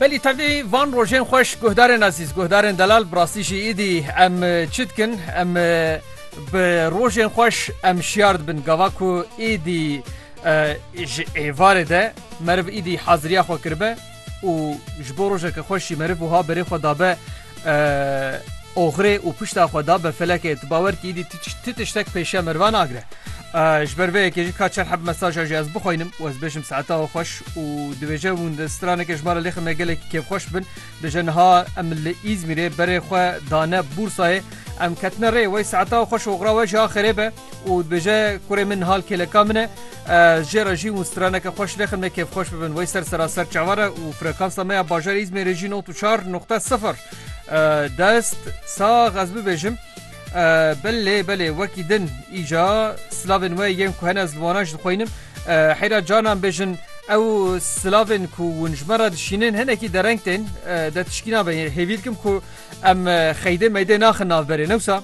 Belî tevî van rojên xweş guhdarên ezîz guhdarên delal bi rastî jî îdî em çi dikin em bi rojên xweş em şiyar dibin gava ku êdî ji êvarê de meriv îdî haziriya xwe kiribe û ji bo rojeke xweş jî meriv wiha berê xwe dabe Oxirê û pişta xwe da be felekê. Tu bawer kî îdî ti tiştek pêşiya merivan nagire. Ji ber vê yekê jî ka çar heb mesaja jî ez bixwînim û ez bêjim saeta we xweş û dibêje hûn di stranekê ji me re lêxin me gelekî kêfxweş bin. Dije niha em li Îzmîrê berê xwe dane bûrsayê. Em ketine rê wey saeta we xweş oxira we jî a xêrê be û dibêje kurê min niha li kêleka min e. Jê re jî hûn straneke xwe şilexin me kêfxweş bibin. Wey ser seraser çavar e û frekansa me ya bajarê Îzmêrê jî not û çar nuqte sifir. Dest sax ez bibêjim. Belê belê wekî din îca silavên we yên ku hene ez li wana jî dixweynim. Heyra canan bêjin ew silavên ku hûn ji me re dişînin hinekî dereng tên de tişkî nabe. Hêvî dikim ku em xeydê meydê naxin navberê newsa.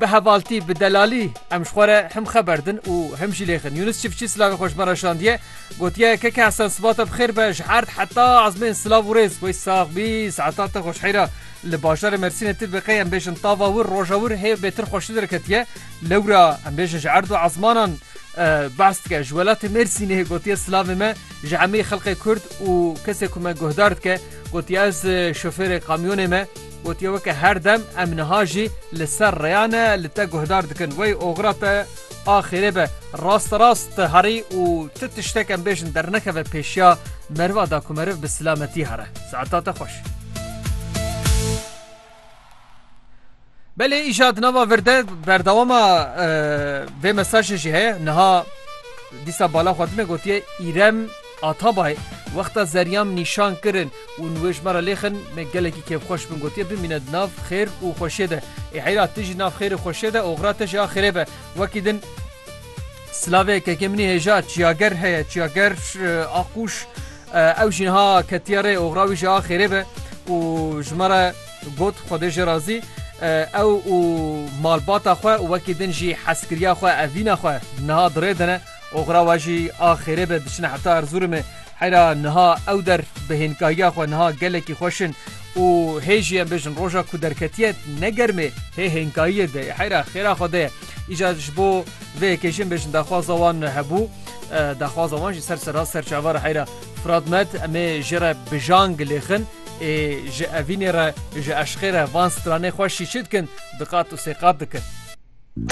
Bi hevaltî, bi delalî em ji xwe re him xeber din û him jî lêxin. Yûnis Çiftçî silavê xwe ji me re şandiye, gotiye KK Hesen sibata bi xêr be ji erd heta ezmên silav û rêz. Wey sax bî, saeta te xweş heyra. Li bajarê Mersînê tu bi qey em bêjin tava wir, roja wir hê bêtir xweştir derketiye. Lewra em bêjin ji erd û ezmanan behs dike. Ji welatê Mêrsînê gotiye silavê me ji hemî xelkê Kurd û kesê ku me guhdar dike. Gotiye ez şofêrê kamyonê me. Gotiye weke her dem em niha jî li ser rêya ne li te guhdar dikin. Wey oxira te a xêrê be. Rast rast herî û tu tiştek em bêjin dernekeve pêşiya meriva da ku meriv bi silametî here. Saeta te xweş. Belê îja di nava vir de berdewama vê mesajê jî heye. Niha dîsa bala xwedine gotiye îrem Atabay, Wexta zeryam nîşan kirin û wê ji me re lêxin me gelekî kêfxweş bûn gotiye bimîne di nav xêr û xweşiyê de. Ê heyra tu jî nav xêr û xweşiyê de oxira te jî axirê be. Wekî din. Silavê kekê min î hêja çiyager heye çiyager Aqûş ew jî niha ketiye rê oxira wî jî axirê be û ji me re got Xwedê jê razî ew û malbata xwe û wekî din jî heskiriya xwe evîna xwe niha di rê de ne. Oxira we jî a xêrê be diçine heta Erzurumê. Heyra niha ew der bi hênkahiya xwe niha gelekî xweş in û hê jî em bêjin roja ku derketiye ne germê hê hênkahiyê de ye heyra xêra xwe de ye. Îcar ji bo vê yekê jî em bêjin daxwaza wan hebû. Daxwaza wan jî ser serra ser çavara heyra Firat Med em ê jê re bi jan gilêxin ê ji evînê re ji eşqê re van stranê xweş jî çi dikin? Diqat û sêqat dikin.